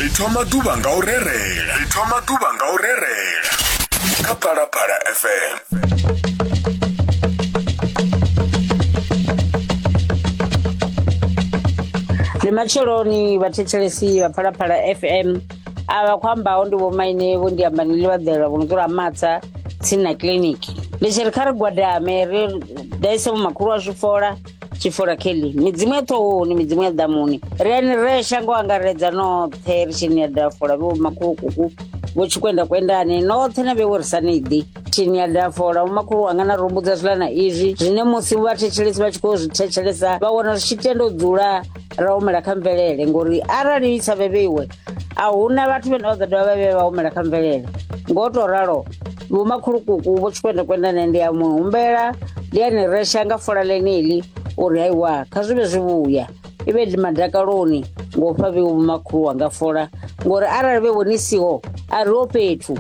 ri thoma ḓuvha nga u rerela ri thoma ḓuvha nga u rerela kha phalaphala fm ndi matsheloni vhathetshelesi vha phalaphala fm avha khou ambaho ndi vhomaine vho ndi amba nili vhaḓela vho no dzula matsa tsini na kiliniki ndi tshi ri kha ri gwadame ri daise vhomakhulu wa zwifola tshifula kelly midzimu ya ṱhohoni midzimu ya ḓamuni ri ani re shango angaredza noṱhe ri tshini ya dafola vho makhulukuku vho tshikwenda kwendani noṱhe na vhewo ri sa niḓi tshini ya dafola vhomakhulu wanga na rumbudza zwiḽa na izwi zwine musi vhathetshelesi vha tshi khou zwi thetshelesa vha wana zwi tshi tenda u dzula ra humela kha mvelele ngori arali i sa vhevheiwe a huna vhathu vhane vha ḓo dovha vha vhe vha humela kha mvelele ngo to ralo vhomakhulukuku vho tshikwendekwenda ne ndi ya mu humbela ndi ya ni resha nga fola ḽeneḽi uri haiwa kha zwi vhe zwi vhuya i vhe ndi madakaloni ngo fha vheiwe vhomakhulu wanga fola ngori arali vhe vhoni siho a ri ho fhethu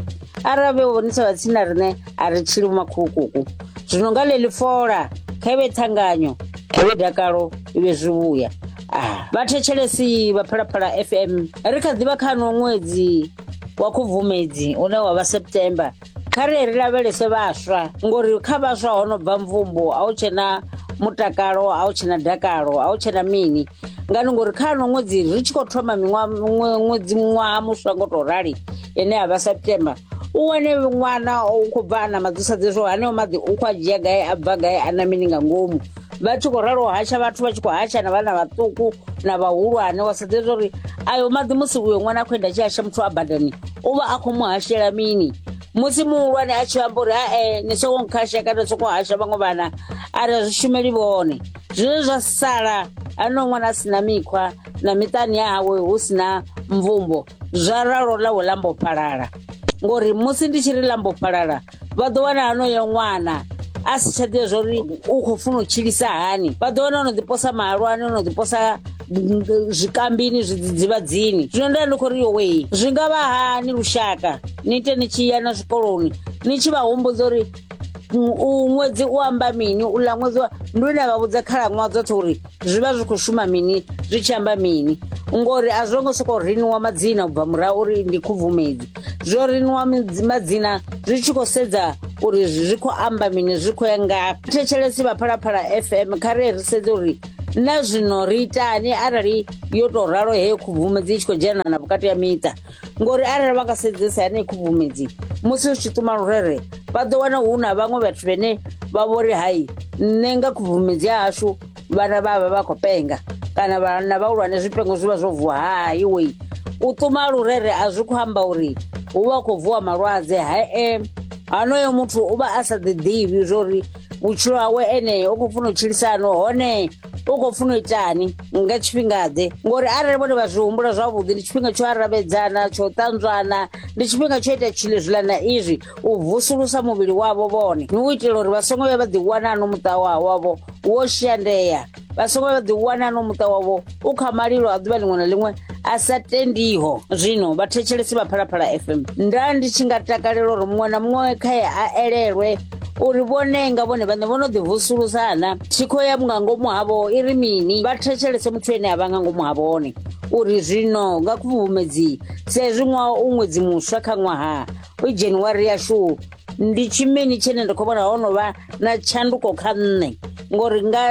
arali vhe vhoni sa vhatsini na riṋe a ri tshili vhomakhulukuku zwino nga ḽeḽi fola kha i vhe thanganyo kha i vhe dakalo i vhe zwi vhuya vhathetshelesi vha phalaphala fm ri kha ḓivha kha no ṅwedzi wa khubvumedzi une wa vha september kha ri ri lavhelese vhaswa ngori kha vhaswa ho no bva mvumbo a u tshena mutakalo a u tshena dakalo a u tshena mini ngani ngori kha no ṅwedzi ri tshi khou thoma miṅwaha ṅwe- ṅwedzi ṅwaha muswa ngo tou rali ine ya vha september u wane ṅwana u khou bva a na maḓi u sa ḓivhi zwo haneo maḓi u khou a dzhia gai a bva gai a na mini nga ngomu vha tshi khou ralo hasha vhathu vha tshi khou hasha na vhana vhaṱuku na vhahulwane wa sedze zwa uri ayo maḓi musi uyo ṅwana a khou enda a tshi hasha muthu a badani u vha a khou mu hashela mini musi muhulwane a tshi amba uri hae ni soko nkhasha kana soko hasha vhaṅwe vhana a ri a zwi shumeli vhone zwine zwa sala ano ṅwana a sina mikhwa na miṱani ya hawe hu sina mvumbo zwa ralo ḽawe ḽa mbofhalala ngori musi ndi tshi ri ḽa mbofhalala vha ḓo wana hanoyo ṅwana a si tsha ḓivha zwauri u khou funa u tshilisa hani vha ḓo wana ono ḓiposa mahalwani ono ḓiposa zwikambini zwidzidzivhadzini zwino nda ndi khou ri yowei zwi nga vha hani lushaka ni ite ni tshi ya na zwikoloni ni tshi vha humbudza uri u ṅwedzi u amba mini u ḽa ṅwedzi wa ndi une vha vhudza khalaṅwaha dzoṱhe uri zwi vha zwi khou shuma mini zwi tshi amba mini ngori a zwo ngo sokou riniwa madzina ubva murahu uri ndi khubvumedzi zwo riniwa midzi- madzina zwi tshi khou sedza uri zwi zwi khou amba mini zwi khou ya ngafhi thetshelesi vha phalaphala fm kha ri ri sedze uri na zwino ri itani arali yo tou ralo heyo khubvumedzi i tshi khou dzhenana vhukati ya miṱa ngori arali vha nga sedzesa yanei khubvumedzi musi u tshi ṱuma lurere vha ḓo wana hu na vhaṅwe vhathu vhene vha vhori hai nṋe nga khubvumedzi ya hashu vhana vha vha vha khou penga kana vhana vhahulwane zwipengo zwi vha zwo vuwa hai wei u ṱuma lurere a zwi khou amba uri hu vha hu khou vuwa malwadze hae hanoyo muthu u vha a sa ḓiḓivhi zwori vhutshilo hawe ene u khou funa u tshilisa hani hone u khou funa u itani nga tshifhingaḓe ngori arali vhone vha zwi humbula zwavhuḓi ndi tshifhinga tsho aravhedzana tsho ṱanzwana ndi tshifhinga tsho ita tshilo zwiḽa na izwi u vusulusa muvhili wavho vhone ni u itela uri vha songo vhuya vha ḓiwana ano muṱa wa wavho wo shandea vha songo ḓi wana no muṱa wavho u kha malilo a ḓuvha ḽiṅwe na ḽiṅwe a sa tendiho zwino vhathetshelesi vha phalaphala fm nda ndi tshi nga takalela uri muṅwe na muṅwe khae a elelwe uri vhone nga vhone vhaṋe vho no ḓivusulusa na thikho ya nga ngomu havho i ri mini vha thetshelese muthu ene a vha nga ngomu ha vhone uri zwino nga khubvumedzii sa ezwi ṅwaha u ṅwedzi muswa kha ṅwaha u januwari yashu ndi tshimini tshine nda khou vhona ho no vha na tshanduko kha nṋe ngori nga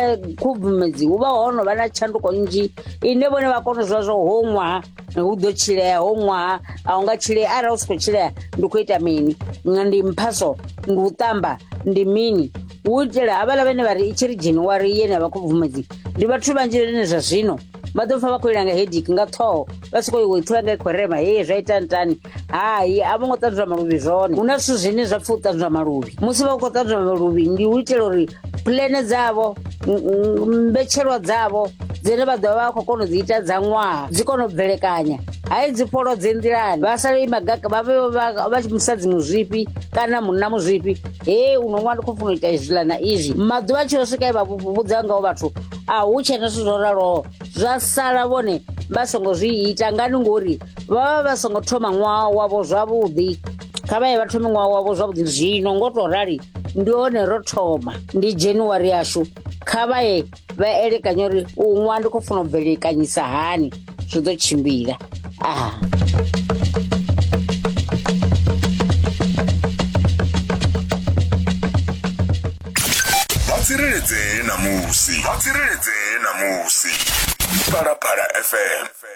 khubvumedzi hu vha ho no vha na tshanduko nnzhi ine vhone vha kona zwa zwo ho ṅwaha hu ḓo tshilea ho ṅwaha a u nga tshilea arali u si khou tshilea ndi khou ita mini nga ndi mphaso ndi u ṱamba ndi mini hu itela havhala vhene vha ri i tshi ri january yene ya vha khubvumedzi ndi vhathu vhanzhi vhene zwa zwino vha ḓo pfa vha khou ilanga hedik nga ṱhoho vha si khou iwe thula nga khorema hee zwa ita ntani hai a vho ngo ṱanzwa maluvhi zwone hu na zwithu zwine zwa pfa u ṱanzwa maluvhi musi vha khou ṱanzwa maluvhi ndi u itela uri pulene dzavho m- m- mbetshelwa dzavho dzine vha ḓovha vha khou kona u dzi ita dza ṅwaha dzi kona u bvelekanya hai dzi polo dze nḓilani vha sale i magaka vha vhe vha- vha tshi musadzi muzwifhi kana munna muzwifhi he uno ṅwana ndi khou funa u ita izwiḽa na izwi maḓuvha a tshi yo swika e vha vhu- vhudza ngaho vhathu a hu tshena zwithu zwo raloho zwa sala vhone vha songo zwi ita ngani ngori vha vha vha songo thoma ṅwaha wavho zwavhuḓi kha vha ye vha thome ṅwaha wavho zwavhuḓi zwino ngo to rali ndi hone ro thoma ndi january yashu kha vha ye vha elekanye uri u ṅwaha ndi khou funa u bvelekanyisa hani zwi ḓo tshimbila ah. tsireledzee na musi vha tsireledzee na musi phalaphala fm